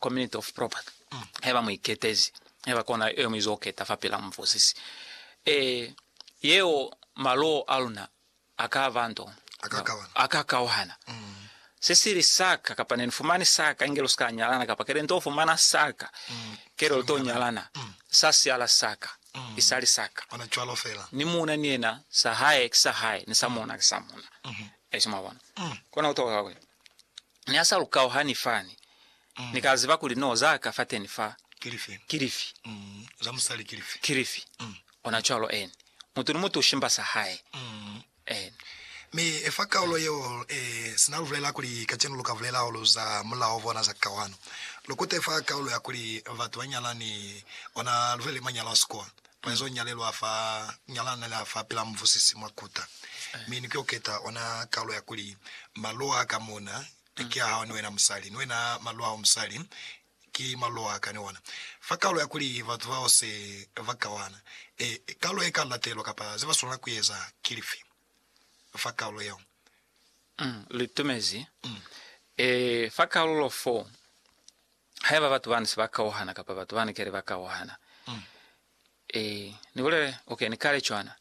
Community of property, haiba mu iketezi, haiba kona yeo mu izo keta fapil'a mufosisi e yeo, maloo a luna a ka ba nto, a ka kauhana. Se sili sa ka, kapa ne ni fumani sa ka, inge lu si ka nyalana, kapa kele nto fumana sa ka, kele lu to nyalana, sa siala sa ka, i sa li sa ka. Ni muuna ni yena, sa hae ki sa hae, ni sa muuna ki sa muuna. Eshi, mwabona, kona ku toka ka kuli. Ni ha sa lu kauhani fani, Ni ka ziba kuli no za ka fateni fa. Ki lifi? Ki lifi? Za musali ki lifi? Ki lifi? Ona cwalo, eni. Mutu ni mutu ushimba sa hae. Eni. Mi fa kaulo yeo, sina lu bulela kuli kacenu lu ka bulela hahulu za mulao bona za kauhano, lu kute fa kaulo ya kuli batu ba nyalani, ona lu bulele manyalo a sikolo. Mwezo nyalelwa fa nyalana la fa pila muvusisi mwa kuta, mi ni kyoketa ona kalu ya kuli, Malo a ka muna ki a hao ni wena musali, ni wena malo ao musali ki malo a ka ni ona. Fa kalu ya kuli batu bao se ba kawana, e, kalu e ka latelwa kapa ze ba swanela ku eza ki lifi fa kalu yeo? Lu itumezi, e, fa kalulo fo Haiba batu bani se ba kauhana kapa batu bani kale ba kauhana, e, ni bulele, ok, ni kale cwana.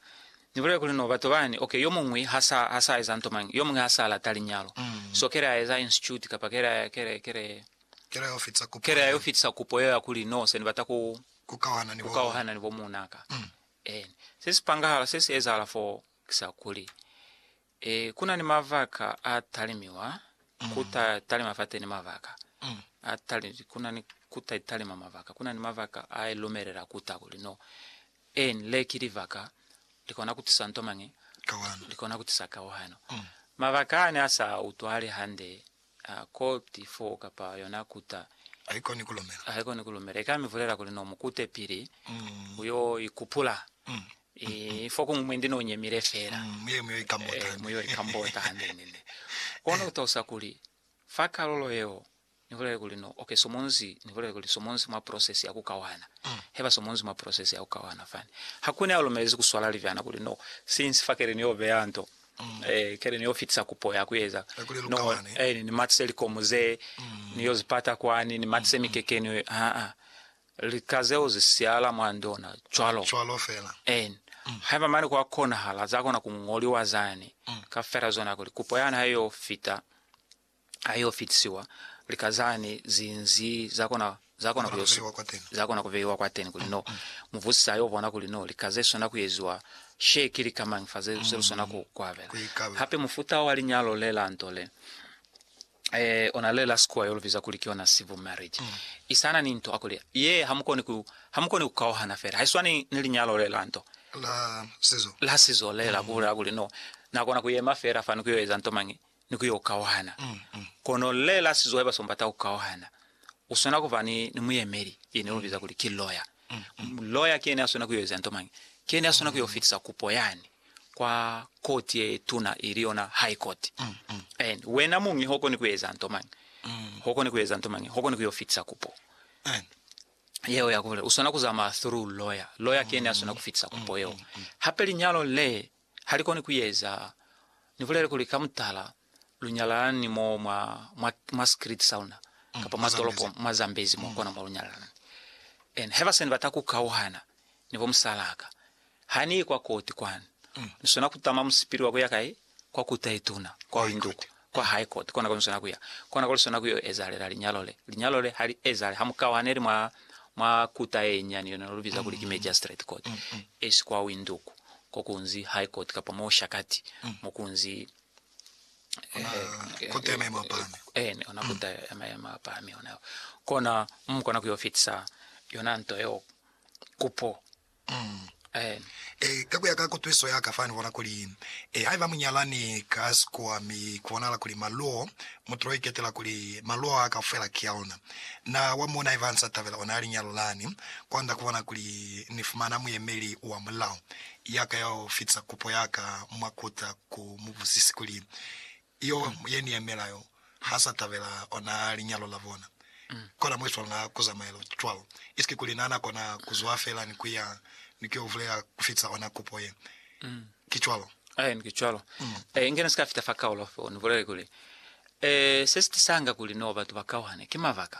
Ni bulele kuli no batu bani, ok, yo muñwi ha sa, ha sa eza nto mañi, yo muñwi ha sa lata linyalo, so kale a eza institute kapa kale, kale, kale, kale ayo fitisa kupo, kale ayo fitisa kupo yeo ya kuli, no, se ni bata ku, ku kauhana ni bo, ku kauhana ni bo muunaka. Eni. Se si pangahala, se si ezahala foo, ki sa kuli, Ee, ku na ni mabaka a talimiwa, ku ta talima fateni mabaka a tali, ku na ni ku ta talima mabaka, ku na ni mabaka a i lumelela ku ta kuli no. Eni, le ki libaka li kona ku tisa nto mañi? Kawano. Li kona ku tisa kawano. Mabaka ani a sa utwali hande A koti foo kapa yona kuta. Haikoni ku lumela. Haikoni ku lumela. Ika mi vulela kuli no mu kute pili ku yo ikupula. Ii, fokuñwi mwe ndi no nyemile fela. Muye mu yo ikambota hande. Mu yo ikambota hande nene. Kono ku talusa kuli fa kalulo yeo ni bulele kuli no oke somonzi, ni bulele kuli somonzi mwa process ya ku kawana. Heba somonzi mwa process ya ku kawana fani. Hakuna ya lumelezi ku swala libyana kuli no, since fakele ni yo beya nto. Kale ni yo fitisa kupo ya ku eza noho ni matise likomu ze ni yo zi pata kwani, ni matise mikekeni, aa, lika zeo zi siyahala mwa ndona cwalo cwalo fela. Haiba mane kwa konahala, za kona ku ngoliwa zani ka fela zona kuli kupo yani ha i yo fita. ha yo fitisiwa, lika zani zinzi zakona zakona kuyosu zakona kuveiwa kwateni kuli no muvusisa ayo bona kuli no lika ze sona kuyeziwa she ki lika mañi fa ze lu sona ku kuabela. Hape mufuta wa linyalo le la nto le eh ona le la sikuwa yo lu biza kuli ki ona civil marriage isana ni nto akuli ye ha mukoni ku ha mukoni ku kauhana fela ha iswani ni linyalo le la nto la sizo la sizo le la kubulela kuli no nakona kuyema fela fani kuyo eza nto mañi ni ku yo kauhana. Kono rre Lasizo haiba seo mbata ku kauhana, u swana ku ba ni, ni muyemeli, ye ne lu biza kuli ki loya. Loya ki yene ya swana ku yo eza nto mañi? Ki yene ya swana ku yo fitisa kupo yani kwa koti ye tuna, ili yona High Court. And wena muñi ho koni ku eza nto mañi? Ho koni ku eza nto mañi? Ho koni ku yo fitisa kupo yeo ya ku bulela. U swana ku zamaya through loya. Loya ki yene ya swana ku fitisa kupo yeo. Hape linyalo le halikoni kueza, nibulele kuli ka mutala lunyalana ni mo mwa, mwa, mwa sikiliti sauna, mm, kapa mwa tolopo, mwa Zambezi, mwa mm. kona mo lunyalana ni. And haiba seni bata kukauhana ni bo musalaka, hani kwa koti kwani, mm. nisona kutama musipili wa kuya kai, kwa kuta ituna, kwa linduku. kwa hae koti kona koniswana kuya kona kuli sona kuyo ezahalela linyalo le. Linyalo le ha li ezahale ha mu kauhaneli mwa mwa kuta ye nyani yona no lu biza kuli ki magistrate court, esi kwa Windhoek ko kunzi high court kapa mo Oshakati mo kunzi eh, kota ya maemo a pahami. eh, ne ona kota ya maemo a pahami ona kona mu kona kuyo fitisa yona nto yeo kupo Amen. E, ka kuya ka kutwiso yaka fa nibona kuli, e, haiba munyalani ka si kuwa mi kubonahala kuli maluo, mutulo iketela kuli maluo a kaufela ki a ona, na wa mona haiba ansa tabela ona a linyalo lani, kwanda kubona kuli ni fumana muyemeli wa mulao yaka yao fitisa kupo yaka mwa kuta ku mubuzisi kuli, Yo yeni ya mela yo ha sa tabela ona linyalo la bona? Kona mwe swanga ku zamaelo cwalo. Isiki kuli na na kona ku zwa fela ni ku ya ni ku yo vulela ku fita ona kupo ye. Ki cwalo? Aen, ki cwalo. E, inge ni si ka fita fa kaulo feo, ni bulele kuli, E, se si tisanga kuli no batu ba kauhane, ki mabaka.